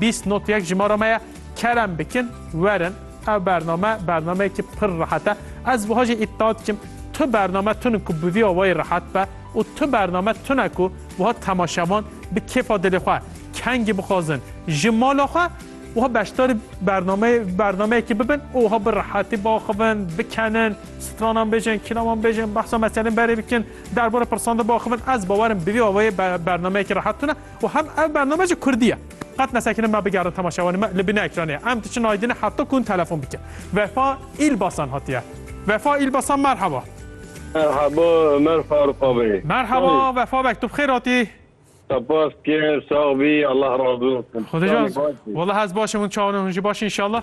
Bîst not yek jimara me ye. Kerem bikin werin. Ev bername bernameyekî pir rehet e. Ez wiha jî îddia dikim tu bername tune ku bi vî awayî rehet be û tu bername tune ku wiha temaşevan bi kêfa dilê xwe kengî bixwazin ji mala xwe wiha beşdarî bernameyê bernameyekî bibin û wiha bi rehetî biaxivin, bikenin, stranan bêjin, kîlaman bêjin, behsa meselên berê bikin, derbara pirsan de biaxivin. Ez bawerim bi vî awayî bernameyekî rehet tune. û hem ev bername ji kurdî ye. Qet nesekinî me bigerin temaşevanê me li bîna ekranê ye. Em diçin aydînê heta ku hûn telefon bikin. Vefa Îlbasan hatiye. Vefa Îlbasan merheba. Merhaba Omer Farukabê. Merhaba Vefa beg tu bi xêr hatî. Sepas kêr sax bî Allah razû olsun. Xwedê ji wala ez başim hûn çawan hûn jî baş in inşallah.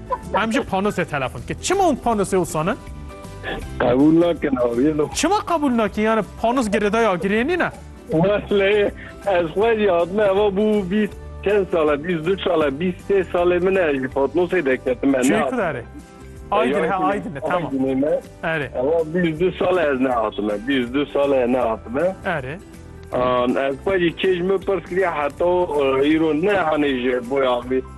Em ji panosê telefon dike. Çima hûn panosê wisa ne? Qebûl nakin aviye lo. Çima qebûl nakin yani panos girêdaya girê nîne? Wesleyê ez xwe jî hatime eva bû bîst çend sale bîst du sale bîst sê salê min e ji patnosê deketim e Çêku derê. Aydin he aydin e tamam. Erê. Eva bîst du sale ez nehatime bîst du sale nehatime. Erê. Ez xwe jî kêj min pirs kiriye heta îro ne hanê ji boya vê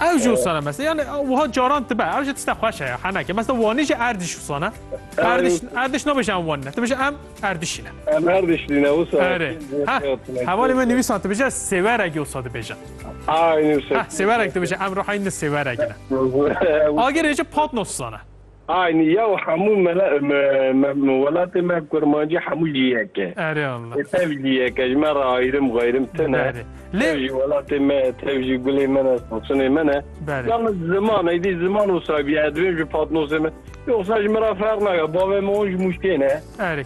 Ew jî wisa ne mes yani wiha caran tibe ew jî tişta xweş heye heneke mes wanî jî erdîş wisa ne erdiş erdiş nabêje em wan ne tu bêje em erdişî ne em erdişî ne wisa hevalê min nivîsan tu bêje sêwerek wisa dibêje sêwerek dibêje em ruhayîn ne sêwerek ne agirê jî patnos wisa ne Aynî ya û hemû welatê me kurmancî hemû jî yek e. Erê Allah. Ê tev jî yek e ji me re ayirim gayirim tune. Berê. Lê Tev jî welatê me ye, tev jî gulê min e, sasunê min e. Berê. Ya min ziman êdî ziman wisa bîya, divêm ji patnosê me. Yoxsa ji min re ferq nake, bavê me wan ji mûşkê ne. Erê.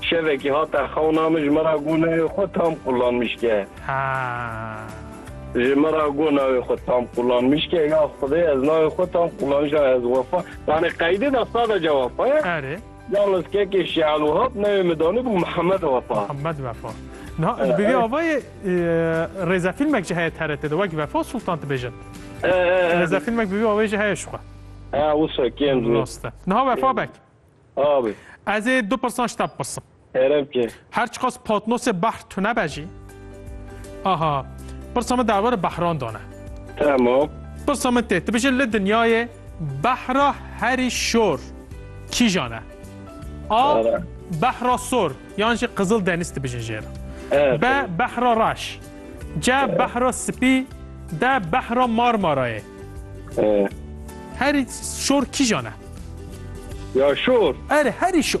Şevekî hate xewna min ji min re got navê xwe Tam Kulan Mişke. Haa. Ji min re got navê xwe Tam Kulan Mişke. Ya Xwedê ez navê xwe Tam Kulan Mişke ez wefa. Yanî qeydê de sadeca wefa ye. Erê. Yalnız kekê Şial Wehab navê min danibû Mihemed Wefa. Mihemed Wefa. Niha bi vî avayê rêzefîlmek jî heye TRT'ê de wek Vefa Sultan dibêjin. Rêzefîlmek bi vî avayê jî heye jixwe. Wisa kêm zû. Rast e. Niha Wefa Beg. Abê. Ez ê du pirsan ji te bipirsim. Ere bike. Her çiqas patnosê behr tune be jî. Aha. Pirsa min derbarê behran dane. Tamam. Pirsa min tê. Tu bijî li dinyayê behra herî şor kîjan e? A. Behra sor yan jî qizil denîz tu bijî jê re. B. Behra reş. C. Behra spî. D. Behra marmarayê. Herî şor kîjan e? Ya şor? Erê, herî şor.